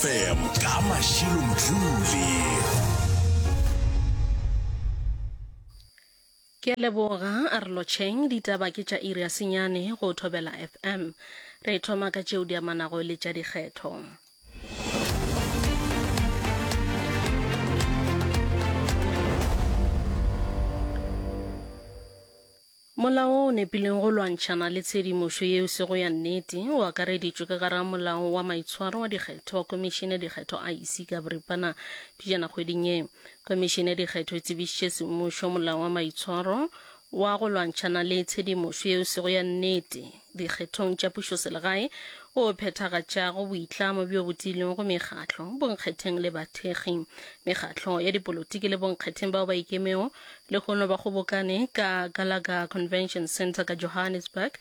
FM ka Mashilo Mdluli. Ke a leboga a re lotšheng ditaba ke tša iri ya senyane go thobela fm re thoma ka tšeo di amanago le tša dikgetho Molao o o nepilego go lwantšhana le tshedimošo yeo se go ya nnete o akareditšwe ka gare ga Molao wa Maitshwaro wa Dikgetho wa Khomišene ya Dikgetho, IEC, ka boripana pejana kgweding ye. Khomišene ya Dikgetho e tsebišitše semmušo Molao wa Maitshwaro wa go lwantšhana le tshedimošo yeo se go ya nnete, dikgethong tša pušoselegae o phethagatšago boitlamo bjo bo tiilwego go mekgatlo, bonkgetheng le bathekgi, mekgatlo ya dipolotiki le bonkgetheng bao ba ikemego, lehono ba kgobokane ka Gallagher Convention Centre ka Johannesburg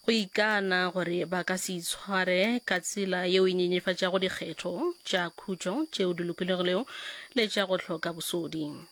go ikana gore ba ka se itshware ka tsela yeo e nyenyefatšago dikgetho tša khutšo tšeo di lokologilego le tša go hloka bosodi.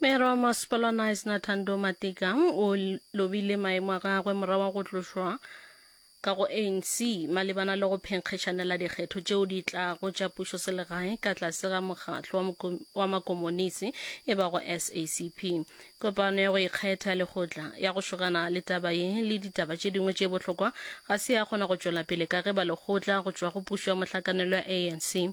Mayor wa Masepala Knysna Thando Matika o lobile maemo a gagwe morago go tlošwa ka go ANC malebana le go phenkgetšanela dikgetho tšeo di tlago tša pušo selegae ka tlase ga mokgatlo wa makomonisi e bago SACP. Kopano ya go ikgetha ya lekgotla ya go šogana le taba ye le ditaba tše dingwe tše bohlokwa ga se ya kgona go tšwela pele ka ge ba lekgotla go tšwa go pušo ya mohlakanelo ya ANC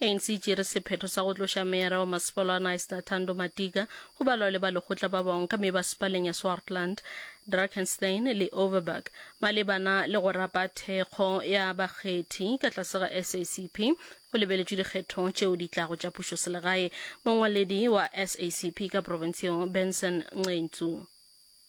ANC e tšere sephetho sa go tloša meyara wa masepala wa Knysna Thando Matika go balwa le ba lekgotla ba bangwe ka mebasepaleng ya Swartland, Drakenstein le Overberg malebana le go rapa thekgo ya bakgethi ka tlase ga SACP go lebeletšwe dikgetho tšeo di tlago tša pušoselegae. Mongwaledi wa SACP ka profenseng Benson Nqentsu.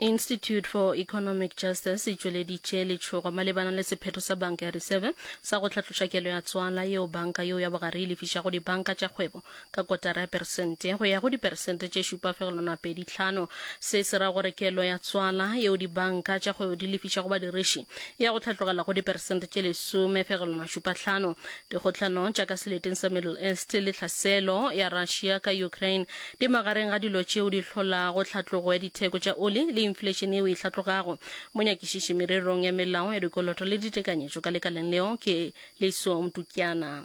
Institute for Economic Justice e tšweleditše letšhogo malebana le sephetho sa banka ya Reserve sa go hlatloša kelo ya tswala yeo banka yeo ya bogare e lefišago dibanka tša kgwebo ka kotara ya peresente go ya go diperesente tše šupa fegelwana a pedi tlhano. Se se ra gore kelo ya tswala yeo dibanka tša kgwebo di lefišago badiriši ya go tlhatlogela go diperesente tše lesome fegelwana šupa tlhano. Dikgohlano tša ka seleteng sa Middle East le tlhaselo ya Russia ka Ukraine di magareng ga dilo tšeo di hlolago tlhatlogo ya ditheko tša oli le inflation yeo e hlatlogago. Monyakišiši mererong ya melao ya dikoloto le ditekanyetšo ka lekaleng leo ke Liso Mtukiana.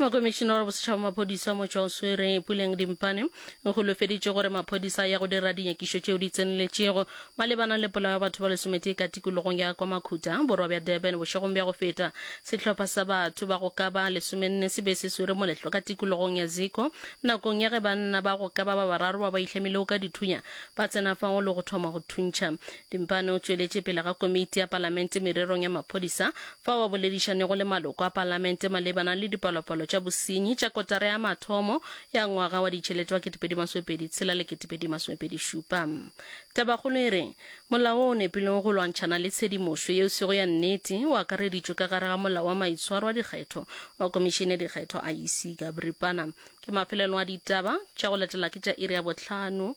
mokomišina wa bosetšhaba wa maphodisa motšwa o swere puleng dimpane o golofeditše gore maphodisa ya go dira dinyakišo tšeo di tseneletšego malebana le polao ya batho ba lesometee ka tikologong ya kwa makhuta borwa bja durban bošegong bja go feta sehlopha sa batho ba go ka ba lesomenne se be se swere moletlo ka tikologong ya ziko nakong ya ge banna ba go ka ba ba bararo ba ba ihlamilego ka dithunya ba tsena fao le go thoma go thuntšha Dimpane o tšweletše pele ga Komiti ya Palamente mererong ya maphodisa fao a boledišanego le maloko a Palamente malebana le dipalopalo tša bosenyi tša kotara ya mathomo ya ngwaga wa ditšhelete wa 2026 le 2027. Tabakgolo e re, Molao wo o nepilego go lwantšhana le tshedimošo yeo sego ya nnete o akareditšwe ka gare ga Molao wa Maitshwaro a Dikgetho wa Komišene ya Dikgetho, IEC, ka boripana. Ke mafelelo a ditaba tša go latela ke tša iri ya bohlano.